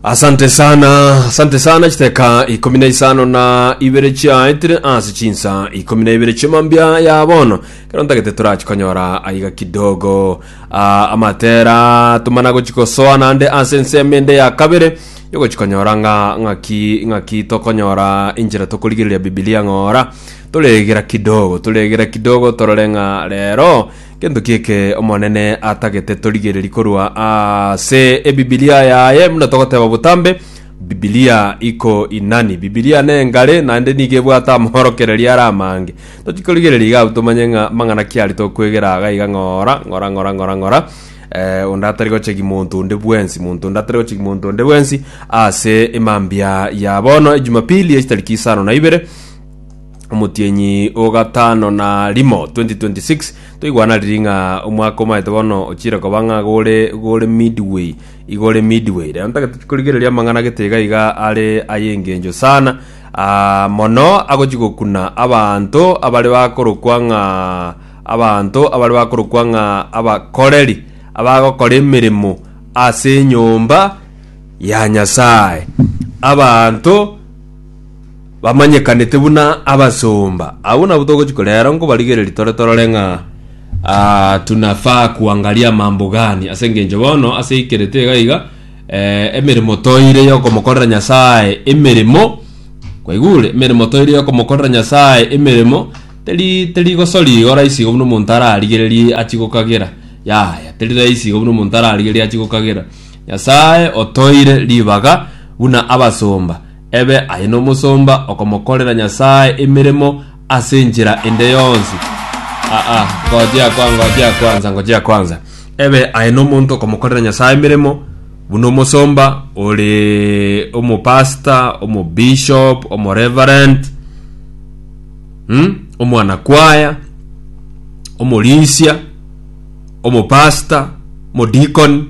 asante sana asante sana chiteka ikumi na isano na ibere chiaetire ase chinsa ikumi na ibere chimambia ya bono kero ntagete torachikonyora aiga kidogo Ah, amatera tumana gochikosoa nande ase ensemo ende ya kabere yogochikonyora ng'a ng'aki ng'aki tokonyora inchera tokorigereria bibilia ng'ora toregera kidogo toregera kidogo torore ng'a rero Gento ki'eke Omonene atagete torigererie korwa ase Ebibilia yaye, buna togoteba botambe, Bibilia iko inani. Bibilia nengare, naende nigo ebwate amaorokererio are amange. Tochia korigereria iga abwo tomanye ng'a amang'ana ki aria tokwegera iga iga ng'ora, ng'ora, ng'ora, ng'ora, ng'ora, eh, onde atari gochegi monto onde bwensi, monto onde atari gochegi monto onde bwensi ase emambia ya bono, Ejumapili echitariki isano na ibere, omotienyi o gatano na rimo 2026 toigwana riri ng'a omwaka omaete bono ochire koba ng'a gore gore midway igore midway rero ntagete korigereria amang'ana gete iga iga are ay'engencho sana ah, mono agochi gokuna abanto abare bakorokwa ng'a abanto abare bakorokwa ng'a abakoreri abagokora emeremo ase enyomba ya nyasaye abanto Bamanyekanete buna abasomba. Agwo nabwo togochia korera aro nkobarigereria tore torore ng'a ah, tunafaa kuangaria mambo gani ase engencho bono ase aikerete iga iga eh, emeremo toire yokomokorera Nyasaye emeremo kwaigure emeremo toire yokomokorera Nyasaye emeremo teri teri gosori igo rahisi igo buna omonto ararigererie achie gokagera yaya teri rahisi igo buna omonto ararigererie achie gokagera Nyasaye otoire ribaga buna abasomba Ebe aye nomosomba okomokorera Nyasae emeremo ase enchera ende yonsi. Ah ah, ngojea kwa, ngojea kwanza, ngojea kwanza. Ebe aye nomonto okomokorera Nyasae emeremo, buna omosomba, ore omopastor, omobishop, omoreverend, hmm? omwanakwaya, omorisia, omopasta, omodikoni,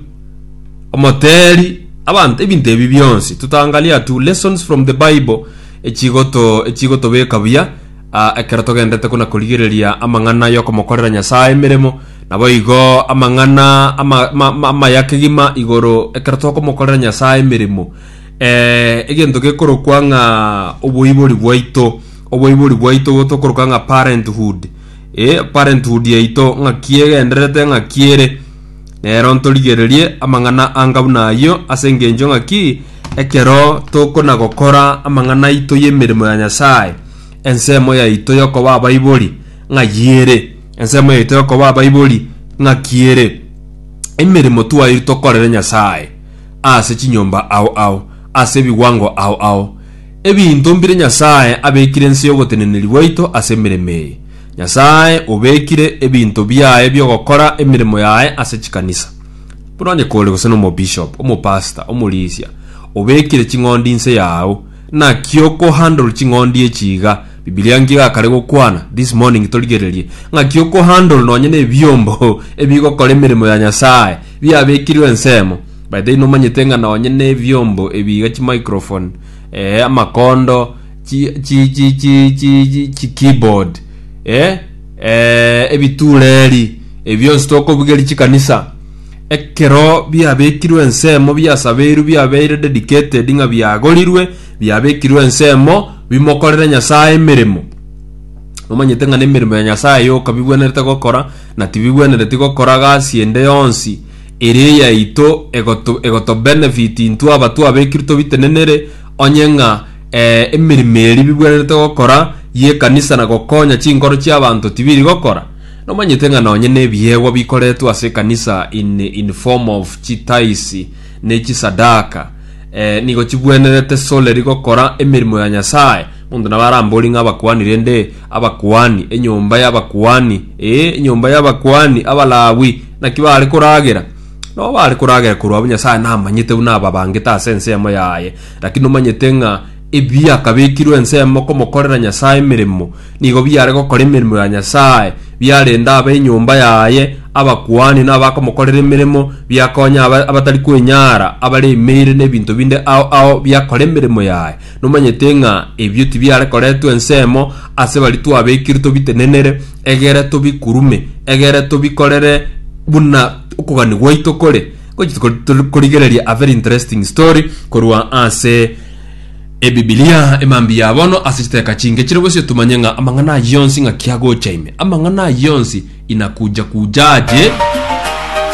omoteri, abanto ebinto ebi bionsi totangaria tu lessons from the bible echigoto echigotobeka buya ah, ekero togendete kona korigereria amang'ana yokomokorera nyasaye emeremo nabo igo amang'ana ama- ma- ma- amaya kegima igoro ekero tokomokorera nyasaye emeremo eh, egento gekorokwa ng'a oboibori bwaito oboibori bwaito tokoroka ng'a parenthood E parenthood yaito ng'aki egendererete ng'aki ere, nero ntorigererie amang'ana angabu nayio ase engencho ng'aki ekero tokona gokora amang'ana aito y'emeremo ya Nyasae, ensemo yaito y'okoba abaibori ng'ayio ere, ensemo yaito y'okoba abaibori ng'aki ere, emeremo twairwe tokorere Nyasae ase chinyomba ao ao, ase ebigwango ao ao, Ebinto mbire Nyasae abekire nse y'ogoteneneri gwaito ase emeremo eye? Nyasae obekire ebinto biaye bi'ogokora emeremo yaye ase chikanisa. Buna onye kore gose nomobishop, omopastor, omorisia, obekire ching'ondi inse yao, naki okohandle ching'ondi echi iga? Bibilia nki egakare gokwana? This morning torigererie ng'aki okohandle nonye nebiombo ebigokora emeremo ya Nyasae biabekirwe ensemo. By the way nomanyete ng'a nonye na ebiombo ebi iga chimicrophone eh, amakondo chi, chi, chi, chi, chi, chi, chi keyboard eh, eh, ebitureri ebionsi tokobugeria chikanisa ekero biabekirwe ensemo biasabeirwe biabeire dedicated ng'a biagorirwe biabekirwe ensemo bimokorere nyasaye emeremo omanyete ng'a nemeremo ya nyasaye yoka bigwenerete gokora na tibigwenereti gokora gasi ende yonsi Eria yaito egoto egoto benefit intwe abatwe abekirwe tobitenenere onye ng'a eh, emerimo eria bibwenerete gokora y'ekanisa na gokonya chinkoro chi'abanto tibiri gokora. Nomanyete ng'a nonye nebiegwa bikoretwe ase ekanisa in in form of chitaisi ne chisadaka eh, nigo chibwenerete solely gokora emerimo ya Nyasaye. Monto nabo arambori ng'a abakuani rende abakuani, enyomba y'abakuani, ee, enyomba y'abakuani, Abalawi, Naki baare koragera? Nao baare koragera korwa abwo Nyasae namanyete buna ababangete ase ensemo yaye. Lakini nomanyete ng'a ebiakabekirwe ensemo komokorera Nyasae emeremo, nigo biare gokora emeremo ya Nyasae, biarenda ab'enyomba yaye, abakuani, na abakomokorera emeremo, biakonya aba abatari kwenyara, abaremeire nebinto binde ao ao biakora emeremo yaye. Nomanyete ng'a ebio tibiare koretwa ensemo ase baria twabekire tobitenenere, egere tobikurume, egere tobikorere buna okogania gwaito kore. Ngochi tiko- tori- korigereria a very interesting story korwa ase ebibilia emambia ya bono ase chiteka chinge chire bosio tumanye ng'a amang'ana ayio yonsi ng'aki agocha ime amang'ana ayio yonsi inakuja kujaje